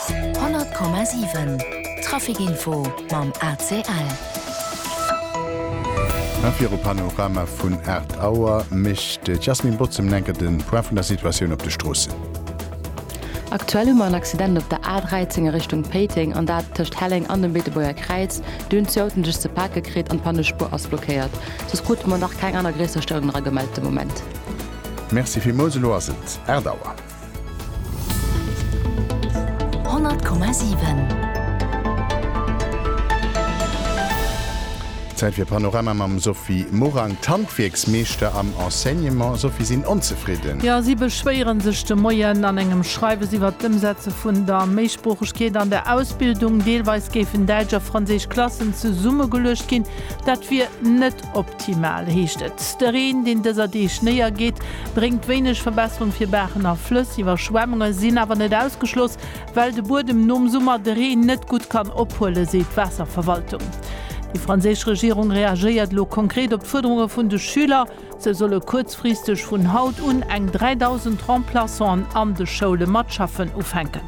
100,7 Trafic Info mam ACL. A viru Panorama vun 8 Auer mécht d'Jasmine Botz en enke de Point vun der Situatioun op de Stroossen. Aktuell hu mer en Accident op der A13 a Richtung Péiteng, an dat tëscht Helleng an dem Beetebuerger Kräiz. Dunn hunn zwee Autoen sech ze pake kritt an d'Pannespuer ass blockéiert. Soss krute mer nach keng aner gréisser Stéierungen eragemellt de Moment. Merci villmools. Elo ass et 8 Auer. Zäit fir Panorama mam Sophie Morang. D'Handwierksmeeschter am Enseignement, Sophie, sinn onzefridden. Jo, si beschwéiere sech de Moien an engem Schreiwes iwwert d'Ëmsetze vun der Méisproochegkeet an der Ausbildung. Deelweis géifen däitsch a franséisch Klassen zesummegeluecht ginn. Dat wier net Optimal heescht et, de Reen, deen dëser Deeg néiergeet, bréngt wéineg Verbesserung fir Baachen a Flëss. Iwwerschwemmunge sinn awer net ausgeschloss, well de Buedem nom Summer de Reen net gutt kann ophuelen, seet d'Waasserverwaltung. Déi franséisch Regierung reagéiert elo konkret op d'Fuerderunge vun de Schüler. Sou solle kuerzfristeg vun haut un eng 3.000 Remplaçanten an de Schoule mat schaffen ufänken.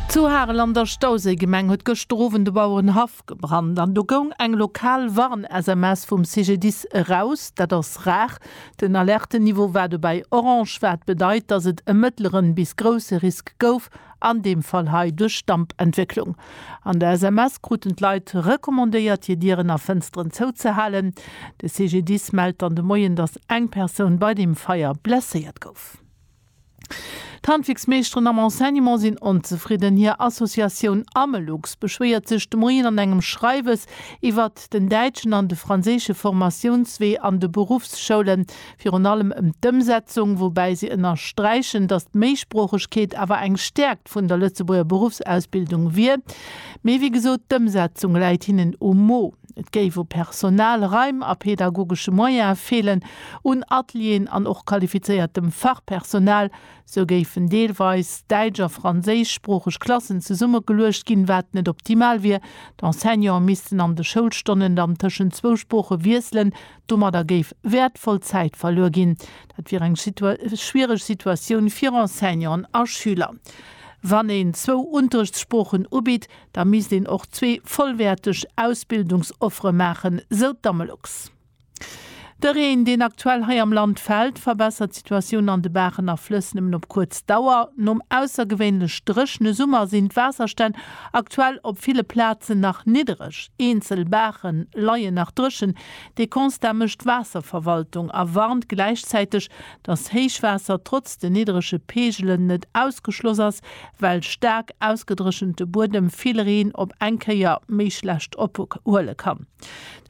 Zu Harel an der Stauséigemeng huet gëschter Owend de Bauerenhaff ofgebrannt an do goung eng lokal Warn-SMS vum CGDIS eraus. Dat ass rar. Den Alertenniveau war dobäi orange, wat bedeit, dass et e mëttleren bis grousse Risk gouf, an deem Fall hei duerch Dampentwécklung. An der SMS kruten d'Leit recommandéiert, hir Dieren a Fënsteren zouzehalen. De CGDIS mellt dann de Moien, dass eng Persoun bei deem Feier blesséiert gouf. D'Handwierksmeeschteren am Enseignement sinn onzefridden. Hir Associatioun Amelux beschwéiert sech de Moien an engem Schreiwes iwwert den däitschen an de franséische Formatiounswee an de Beruffsschoulen, virun allem ëm d'Ëmsetzung, woubäi se ënnersträichen, datt d'Méisproochegkeet awer eng Stäerkt vun der Lëtzebuerger Beruffsausbildung wier. Mee wéi gesot, d'Ëmsetzung läit hinnen um Mo. Et géif u Personal, Raim a pedagogesche Moyene feelen, un Atelieren an och qualifizéiertem Fachpersonal. Sou géifen deelweis däitsch a franséischsproocheg Klassen zesummegeluecht ginn, wat net optimal wier. D'Enseignante missten an de Schoulstonnen dann tëschent zwou Sprooche wiesselen. Domadder géif wäertvoll Zäit verluer ginn. Dat wier eng schwiereg Situatioun fir Enseignanten a Schüler. Wann een zwou Unterrichtssproochen ubitt, Da misst een och zwee vollwäerteg Ausbildungsoffere maachen, sou d'Amelux. De Reen, deen aktuell hei am Land fält, verbessert d'Situatioun an de Baachen a Flëss nëmmen op kuerz Dauer. Nom aussergewéinlech dréchene Summer sinn d'Waasserstänn aktuell op ville Plazen nach niddereg. Eenzel Baache leien nach dréchen. De Constat mécht d'Waasserverwaltung a warnt gläichzäiteg, dass Héichwaasser trotz de niddrege Peegelen net ausgeschloss ass, well staark ausgedréchente Buedem vill Reen op eng Kéier méi schlecht ophuele kann.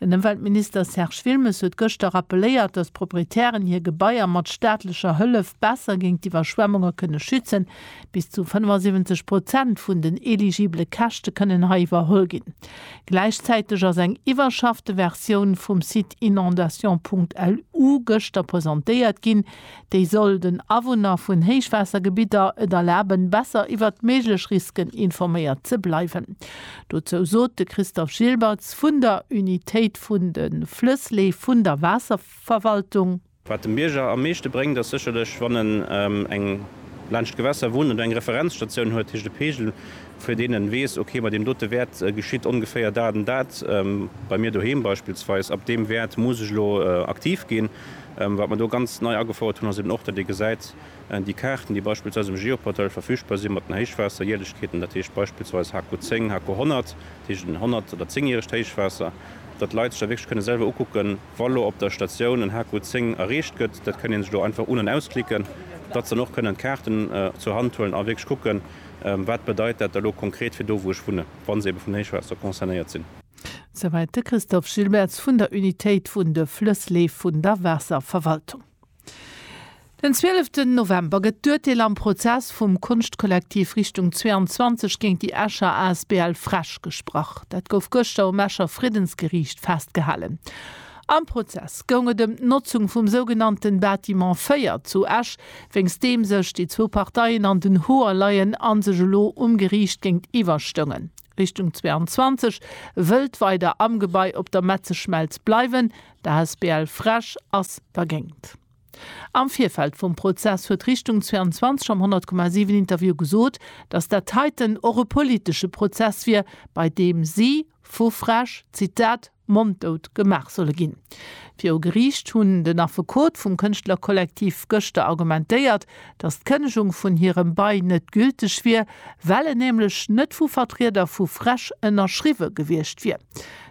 Den Ëmweltminister Serge Wilmes huet gëschter rappeléiert, dass d'Proprietären hir Gebaier mat staatlecher Hëllef besser géint d'Iwwerschwemmunge kënne schützen, Bis zu 75 Prozent vun den eligibele Käschte kënnen hei iwwerholl ginn. Gläichzäiteg ass eng iwwerschaffte Versioun vum Site inondations.lu gëschter presentéiert ginn, déi soll den Awunner vun Héichwaassergebitter et erlaben, besser iwwert méiglech Risken informéiert ze bleiwen. Dozou sot de Christophe Gilbertz vun der Unitéit vun de Flëssleef vun der Waasserverwaltung. Wat dem Bierger am meeschte bréngt, ass sécherlech, wann en eng laanscht d'Gewässer wunnt an do eng Referenzstatioun huet, dat heescht e Peegel, fir deen en weess, ok, bei deem dote Wäert geschitt ongeféier dat an dat, bei mir doheem beispillsweis, ab deem Wäert muss ech elo aktiv ginn. Wat mer do ganz nei agefouert hunn, ass eben och, datt ee gesäit, déi Kaarten, déi beispillsweis um Geoportail verfügbar sinn, mat den Héichwaasserjärlechkeeten, dat heescht beispillsweis HK 10, HK 100, dat heescht en 100 oder 10 järegt Héichwaasser, datt d'Leit sech da wierklech kënne selwer ukucken, Wa lo op der Statioun en HQ 10 erreecht gëtt, dat kënnt een sech do einfach un an ausklicken, datt se dann och kënnen d'Kaarten zur Hand huelen a wierklech kucken, wat bedeit dat da lo konkret fir do wou ech wunnen, wa se ebe vun Héichwaasser concernéiert sinn. Souwäit de Christophe Gilbertz vun der Unitéit vun de Flëssleef vun der Waasserverwaltung. Den zwieleften November gëtt d'Urteel am Prozess vum Konschtkollektiv Richtung 22 géint déi Escher Asbl Fresch gesprach. Dat gouf gëschter um Escher Friddensgeriicht festgehalen. Am Prozess goung et ëm d'Notzung vum sougenannte Bâtiment 4 zu Esch, wéinst deem sech déi zwou Parteien an den Hoer leien a sech elo um Geriicht géintiwwer stoungen. Richtung 22 wëllt weider am Gebai op der Metzeschmelz bleiwen, D'asbl Fresch ass dergéint. Am Virfeld vum Prozess huet Richtung 22 am 100,7 Interview gesot, datt dat heiten och e politesche Prozess wier, bei deem si vu Fresch, Zitat, monddout gemaach solle ginn. Viru Geriicht hunn den Affekot vum Kënschtlerkollektiv gëschter argumentéiert, datt d'Kënnegung vun hirem Bail net gülteg wier, well en nämlech net vu Vertrieder vu Fresch ënnerschriwwe gewiescht wier.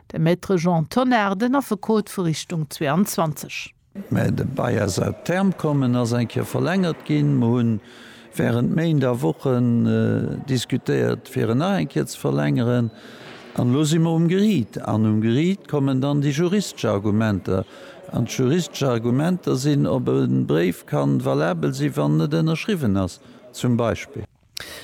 De Maître Jean Tonnar, den Affekot vu Richtung 22. Mä de Bail ass à terme komm, en ass eng Kéier verlängert ginn. Mer hunn während Méint a Wochen diskutéiert, fir en nach eng Kéier ze verlängeren. An elo si mer um Geriit. An um Geriit kommen dann déi juristesch Argumenter. An d'juristesch Argumenter sinn, ob e Bréif ka valabel sinn, wann en net ënnerschriwwen ass, zum Beispill.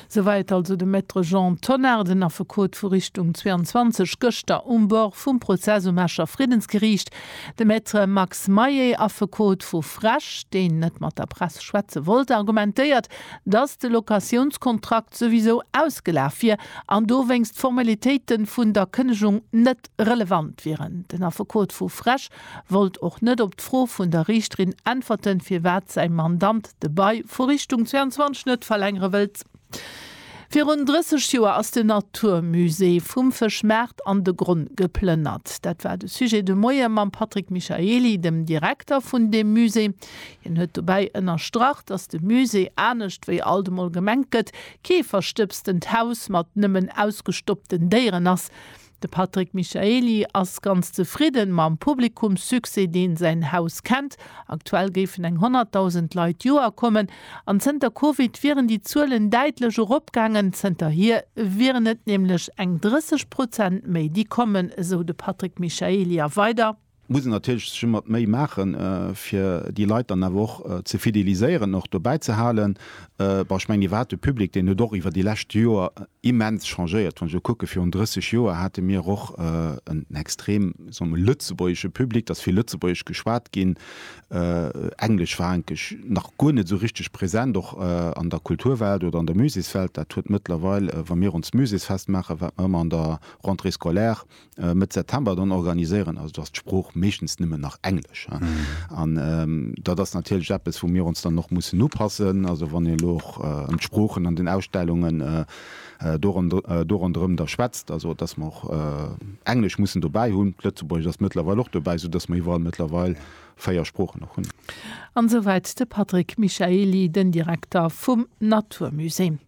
Souwäit also de Maître Jean Tonnar, den Affekot vu Richtung 22, gëschter um Bord vum Prozess um Escher Friddensgeriicht. De Maître Max Mayer, Affekot vu Frech, deen net mat der Press schwätze wollt, argumentéiert, datt de Locatiounskontrakt souwisou ausgelaf wier an dowéinst d'Formalitéite vun der Kënnegung net relevant wieren. Den Affekot vu Frech wollt och net op d'Fro vun der Riichterin äntwerten, firwat säi Mandant de Bail vu Richtung 22 net verlängere wëllt. Virun 30 Joer ass de Naturmusée vum Fëschmaart an de Gronn geplënnert. Dat war de Sujet de Moie mam Patrick Michaely, dem Direkter vun deem Musée. Hien huet dobäi ënnerstrach, datt de Musée, anescht wéi alt emol gemengt gëtt, kee verstëbstent Haus mat nëmmen ausgestoppten Déieren ass. De Patrick Michaely ass ganz zefridden mam Publikumssuccès deen säin Haus kennt. Aktuell géifen eng 100.000 Leit d'Joer kommen an zënter Covid wieren déi Zuelen däitlech eropgaangen. Zënterhier wieren et nämlech eng 30 Prozent méi déi kommen, esou de Patrick Michaely a weider. muss een natierlech sech ëmmer d'Méi maachen, fir déi Leit dann awer och ze fideliséieren, och dobäi ze halen. Bon, ech mengen, Dir waart de Public, deen huet och iwwer déi lescht Joer immens changéiert. Wann ech elo kucke virun 30 Joer hate mir och en extrem, soe mer mol, lëtzebuergesche Public, et ass vill Lëtzebuergesch geschwat ginn, Englesch war eigentlech nach guer net esou richteg present, och an der Kulturwelt oder an der Musékswelt. Dat huet mëttlerweil, wa mir ons Muséksfest maachen, wat mer ëmmer an der Rentrée scolaire, Mëtt September dann organiséieren, also do ass d'Sprooch meeschtens nëmmen nach Englesch. An dat ass natierlech eppes, wou mir ons dann och mussen upassen. Also wann een elo och ëm d'Sproochen an den Ausstellungen do ronderëm da schwätzt, also datt mer och Englesch mussen dobäi hunn. D'Lëtzebuergescht ass mëttlerweil och dobäi, soudatt mer iwwerall mëttlerweil véier Sproochen och hunn. An esouwäit de Patrick Michaely, den Direkter vum Naturmusée.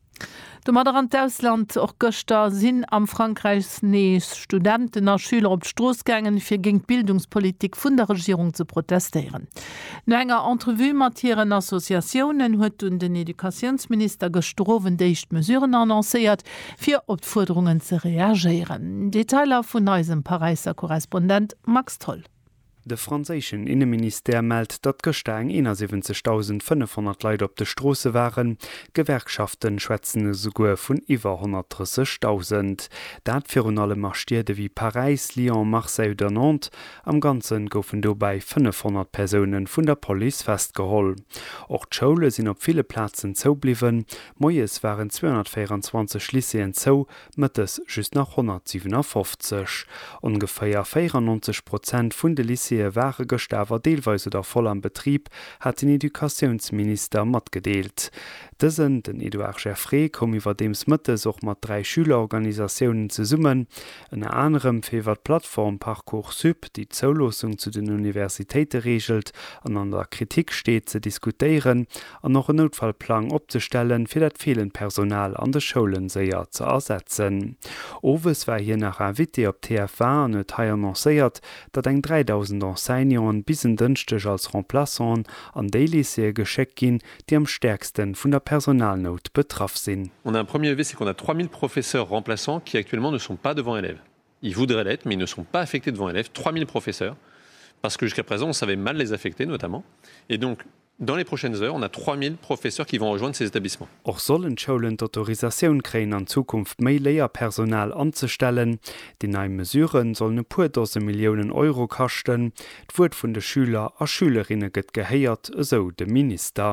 Domadder an d'Ausland, Och gëschter sinn am Frankräich nees Studenten a Schüler op d'Strooss gaangen, fir géint d'Bildungspolitik vun der Regierung ze protestéieren. No enger Entrevue mat hiren Associatiounen huet dunn den Educatiounsminister gëschter Owend éischt Mesuren annoncéiert, fir op d'Fuerderungen ze reagéieren. Detailer vun eisem Paräisser Korrespondent Max Tholl. De franséischen Inneministère mellt, datt gëschter eng 71.500 Leit op de Stroosse waren. D'Gewerkschaften schwätzen esouguer vun iwwer 130.000. Dat virun allem a Stied ewéi Paräis, Lyon, Marseille oder Nantes. Am Ganze goufen dobäi 500 Persoune vun der Police festgeholl. Och d'Schoule sinn op ville Plazen zoubliwwen. Moies waren 224 Lycéeën zou, Mëttes just nach 157. Ongeféier 94 Prozent vun de Lycéeë ware gëschter awer deelweis oder voll am Betrib, hat den Educatiounsminister matgedeelt. Dësen, den Edouard Geffray, koum iwwerdeems mëttes och mat dräi Schülerorganisatiounen zesummen, ënner anerem fir iwwer d'Plattform Parcoursup, déi d'Zouloossung zu den Universitéite reegelt an an der Kritik steet, ze diskutéieren an och en Noutfallplang opzestellen, fir dat feelend Personal an de Schoulen séier ze ersetzen. Owes war hien nach Invité op TF1 an huet hei annoncéiert, datt eng 3.000 Enseignanten bis en Dënschdeg als Remplaçanten an déi Lycéeë geschéckt ginn, déi am stäerkste vun der Personalnout betraff sinn. On a un premier levé ce qu'on a 3.000 professeurs remplaçants qui actuellement ne sont pas devant élèves. Ils voudraient l'être, mais ils ne sont pas affectés devant élèves, 3.000 professeurs, parce que jusqu'à présent on savait mal les affecter notamment, et donc dans les prochaines heures on a 3.000 professeurs qui vont rejoindre ces établissements. Och sollen d'Schoulen d'Autorisatioun kréien an Zukunft méi Léierpersonal anzestellen. Déi nei Mesure sollen e puer Dose Milliounen Euro kaschten. D'Wuert vun de Schüler a Schülerinne gëtt gehéiert, esou de Minister.